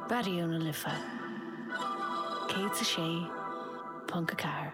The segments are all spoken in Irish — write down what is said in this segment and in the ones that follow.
Raidió na Life 106.4.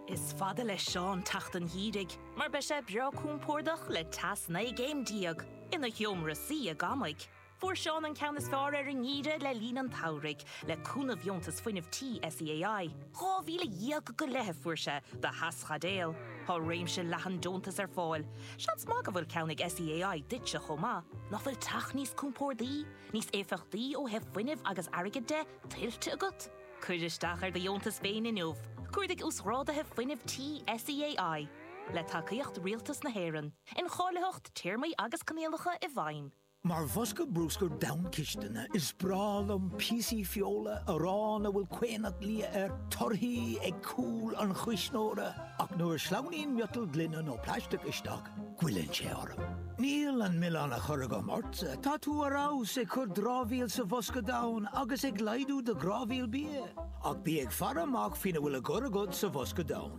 Is fada le Seán teacht an gheimhridh mar beidh sé breá compordach le teas naoi gcéim déag ina sheomra suí i gcónaí. Fuair Seán an ceann is fearr ar an ngeimhreadh le linn an tsamhraidh, le cúnamh dheontas fuinnimh tí SEAI. Dhá mhíle dhéag go leith a fuair sé do theaschaidéal. Tá réimse leathan deontas ar fáil. Seans maith go bhfuil ceann ag SEAI duitse chomh maith. Nach bhfuil teach níos compórdaí, níos éifeachtaí ó thaobh fuinnimh agus airgid de, tuillte agat? Cuir isteach ar do dheontas féin inniu, cuardaigh Uasghráduithe Fuinnimh Tí SEAI, le tacaíocht Rialtas na hÉireann, Incháilitheacht, Téarmaí agus Coinníollacha i bhfeidhm. Mar bhosca bruscair donn cistine, is breá liom píosaí feola, arán a bhfuil caonach liath air, torthaí ag cúl an chuisneora, ach nuair a shleamhnaíonn miotal gloine nó plaisteach isteach, goilleann sé orm. Níl an milleán á chur agam ortsa, tá tú ar fheabhas ag cur dramhaíl sa bhosca donn agus ag laghdú do dhramhaíl bia, ach bí ag faire amach faoina bhfuil á gcur agat sa bhosca donn.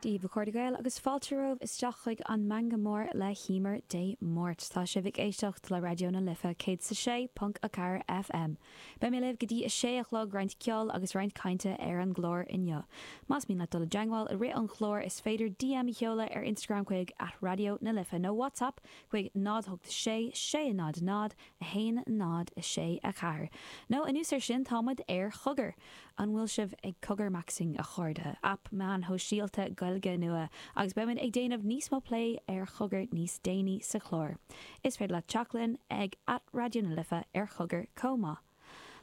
Daoibh, a chairde Gael, agus fáilte romhaibh isteach chuig an Meangadh Mór le hEimear Dé Máirt. Tá sibh ag éisteacht le Raidió na Life 106.4 FM. Beidh mé libh go dtí a sé a chlog, roinnt ceoil agus roinnt cainte ar an gclár inniu. Más mian leat dul i dteangmháil i rith an chláir, is féidir DM a sheoladh ar Instagram chuig, at Raidió na Life, nó WhatsApp chuig 086 600 1, 0, 6, 4, Nó anuas ar sin, tá muid ar chogar! An bhfuil sibh ag cogarmaxing, a chairde? Aip meáin shóisialta Gaeilge nua agus beidh muid ag déanamh níos mó plé ar chogar níos déanaí sa chlár. Is féidir leat teacht linn ag at Raidió na Life ar chogar chomh maith.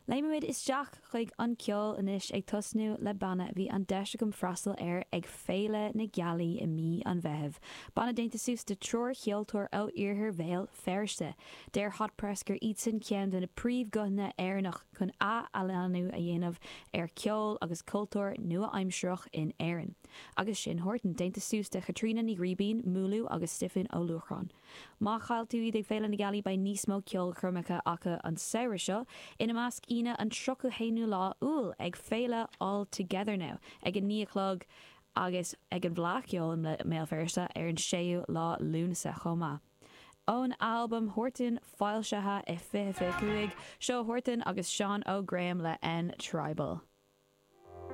Léimimid isteach chuig an ceol anois, ag tosnú le banna a bhí an deis agam freastal air ag Féile na Gealaí i mí an Mheithimh, banna déanta suas de triúr cheoltóir ó iarthar Bhéal Feirste. Deir Hot Press gur iadsan ceann de na príomhghuthanna Éireannach chun ath-athshlánú a dhéanamh ar cheol agus cultúr nua-aimsireach in Éirinn. Agus sin Huartan déanta suas de Chaitríona Ní Ghribín, Múlú, agus Stiofán Ó Luachráin. Má chaill tú iad ag Féile na Gealaí beidh níos mó ceolchoirmeacha acu an samhradh seo, ina measc Aoine an 31ú lá Iúil ag Féile All Together Now ag 9 a chlog agus ag an bhFleadh Cheoil i mBéal Feirste ar an 6ú lá Lúnasa chomh maith. Ón albam Huartan, foilsithe i 2025, seo Huartan agus Seán Óg Graham le N Tribal.